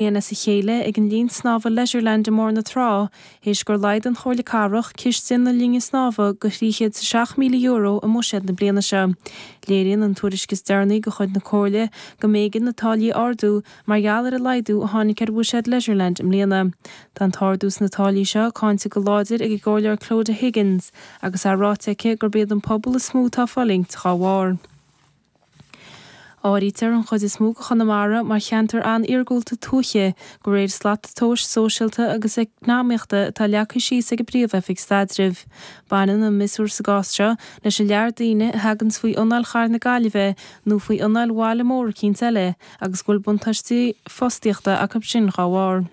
bliain as a chéile ag an Linn Snámha Leisureland i mBarr na Trá théis gur laghdaigh an Chomhairle Cathrach ciste na linne snámha go €306,000 i mbuiséad na bliana seo. Léiríonn an tuairisc is deireanaí de chuid na Comhairle go mb'éigean na táillí a ardú mar gheall ar an laghdú a tháinig ar bhuiséad Leisureland i mbliana. Tá an t-ardú sna táillí seo cáinte go láidir ag an gComhairleoir Clodagh Higgins agus é ráite aici gurb iad an pobal is mó atá ag fulaingt dá bharr. Áirítear an chuid is mó de Chonamara mar cheantar an-iargúlta tuaithe, de réir slat tomhais sóisialta agus eacnamaíochta atá leagtha síos ag an bPríomh-Oifig Staidrimh. Baineann an miosúr sa gcás seo leis an lear daoine a thaganns faoi anáil Chathair na Gaillimhe nó faoi anáil bhaile mór eicínt eile agus go bhfuil buntáistí fostaíochta acu sin dá bharr.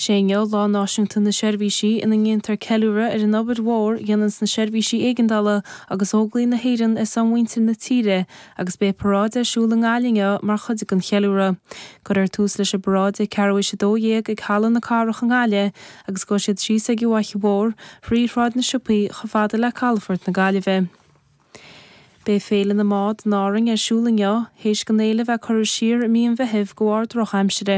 Is é inniu Lá Náisiúnta na Seirbhísí, ina ndéantar ceiliúradh ar an obair mhór dhéananns na seirbhísí éigeandála agus Óglaigh na hÉireann ar son mhuintir na tíre agus beidh paráid ar siúl i nGaillimh inniu mar chuid den cheiliúradh. Cuirfear tús leis an bparáid ag ceathrú éis a dó dhéag ag Halla na Cathrach i nGaillimh agus gabhfaidh siad síos ag an bhFaiche Mhór, thrí Shráid na Siopaí, chomh fada le calafort na Gaillimhe. Beidh Féile na mBád in Árainn ar siúl inniu, théis don fhéile bheith curtha siar i mí an Mheithimh de bharr drochaimsire.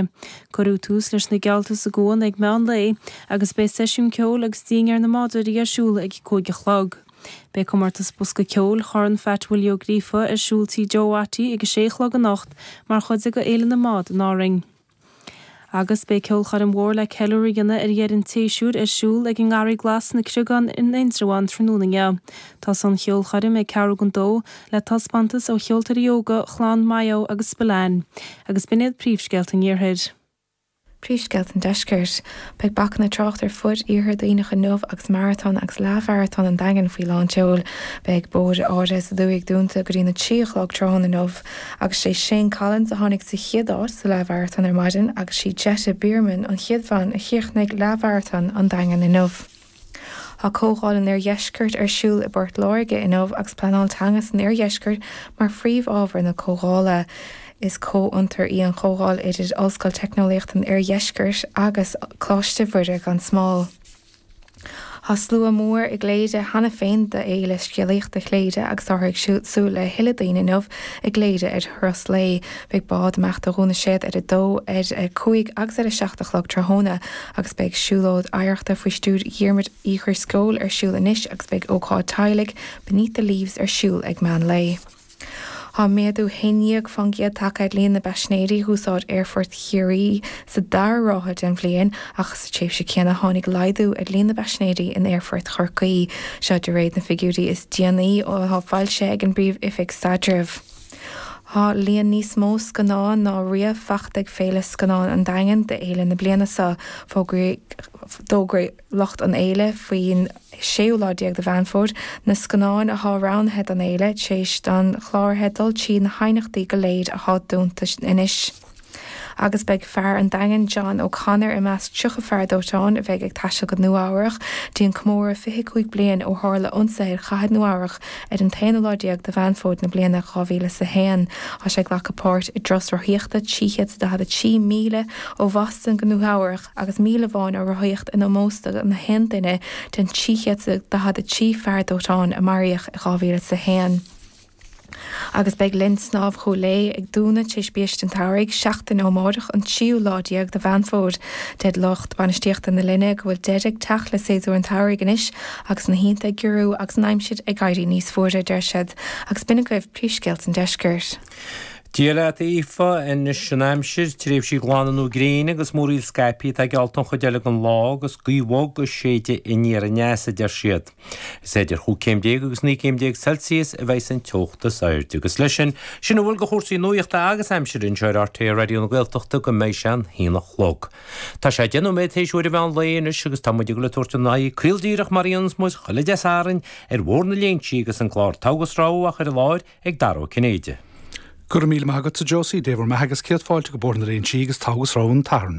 Cuirfear tús leis na geallta sa gcuan ag meán lae agus beidh seisiún ceoil agus dinnéar na mbádóirí ar siúl ag a cúig a chlog. Beidh comórtas bosca ceoil Chorn Pheait Willie Ó Gríofa ar siúl Tí Joe Watty ag a sé a chlog anocht mar chuid de Fhéile na mBád in Árainn. Agus beidh ceolchoirm mhór le ceiliúradh a dhéanamh ar dheireadh an tséasúir ar siúl ag an nGarraí Glas sna Creagáin in Indreabhán tráthnóna inniu. Tosóidh an cheolchoirm ag ceathrú go dó le taispeántas ó cheoltóirí óga Chlann Mahon agus Spillane agus b'in iad príomhscéalta an iarthair. Príomhscéalta an deiscirt. Beidh bacanna tráchta ar fud iarthar Dhuibhneach inniu agus maratón agus leathmharatón an Daingin faoi lán tseoil. Beidh bóithre áirithe sa dúthaigh dúnta go dtí an 3 a chlog tráthnóna inniu. Agus sé Shane Collins a tháinig sa chéad áit sa leathmharatón ar maidin agus sí Jette Bierman an chéad bhean a chríochnaigh leathmharatón an Daingin inniu. Tá Comhdháil an Oirdheiscirt ar siúl i bPort Láirge inniu agus pleanáil teanga san oirdheisceart mar phríomhábhar na comhdhála. Is comhfhiontar í an chomhdháil idir Ollscoil Teicneolaíochta an Oirdheiscirt agus Coláiste Mhuire gan Smál. Tá slua mór i gCléire cheana féin d'fhéile scéalaíochta Chléire agus táthar ag súil le tuilleadh daoine inniu i gCléire ar thuras lae. Beidh bád amach ó Dhún na Séad ar a dó, ar a cúig agus ar a seacht a chlog tráthnóna agus beidh siúlóid oidhreachta faoi stiúir Dhiarmuid Uí Dhrisceoil ar siúl anois agus beidh ócáid teaghlaigh Beneath the Leaves ar siúl ag meán lae. Thá méadú 11% tagtha ar líon na bpaisinéirí d'úsáid Aerfort Chiarraí sa dara ráithe den bhliain ach sa tréimhse céanna tháinig laghdú ar líon na bpaisinéirí in Aerfort Chorcaí, seo de réir na figiúirí is déanaí athá foilsithe ag an bPríomh-Oifig Staidrimh. Thá líon níos mó scannán ná riamh fachta ag Féile Scannán an Daingin d'Fhéile na bliana seo. Fógróidh. lucht an fhéile faoin séú lá déag de Mheán Fómhair, na scannáin athá roghnaithe don fhéile, tréis don chláraithe dul tríd na haighneachtaí go léir athá dúnta anois, agus beidh fear an Daingin, John O Connor, i measc tríocha fear dóiteáin a bheidh ag taisteal go Nua Eabhrach dtí an comóradh fiche cúig bliain ó tharla ionsaithe ar chathair Nua Eabhrach ar an t-aonú lá déag de Mheán Fómhair na bliana dhá mhíle is a haon. Thá sé ag glacadh páirt i dturas rothaíochta trí chéad is a daichead a trí míle ó Bhoston go Nua Eabhrach, agus míle amháin á rothaíocht in ómós do nach aon duine den 343 fear dóiteáin a maraíodh in 2001. Agus beidh linn snámha Chúil Aodha ag dúnadh tar éis biaiste an tsamhraidh, seachtain ó amárach, an tríú lá déag de Mheán Fómhair. Deir lucht bainistíochta na linne go bhfuil deireadh ag teacht le séasúr an tsamhraidh anois agus na hoícheanta ag giorrú agus an aimsir ag éirí níos fuaire, deir siad, agus b'in agaibh príomhscéalta an deisceirt. Dia leat a Aoife, anois an aimsir, tréimhsí glana nó gréine agus múraíl scaipthe atá geallta an chuid eile den lá agus gaoth bhog ag séideadh aniar aneas a deir siad. Is idir chúig céim déag agus naoi gcéim déag Celsius a bheidh san teocht is airde agus leis sin, sin a bhfuil de chúrsaí nuachta agus aimsire anseo ar RTÉ Raidió na Gaeltachta go mbeidh sé an haon a chlog. Tá sé deich nóiméad théis uair an mheán lae anois agus tá muid ag goil ag tabhairt ár n-aghaidh caol díreach mar a dhéananns muid chuile Dé Sathairn ar Bhóthar na Léinsí agus an clár Togha agus Rogha á chur i láthair ag Dara Ó Cinnéide. Go raibh míle maith agatsa Josie, Dé bhur mbeatha agus céad fáilte go Bóthar na Léinsí agus Togha agus Rogha an tSathairn.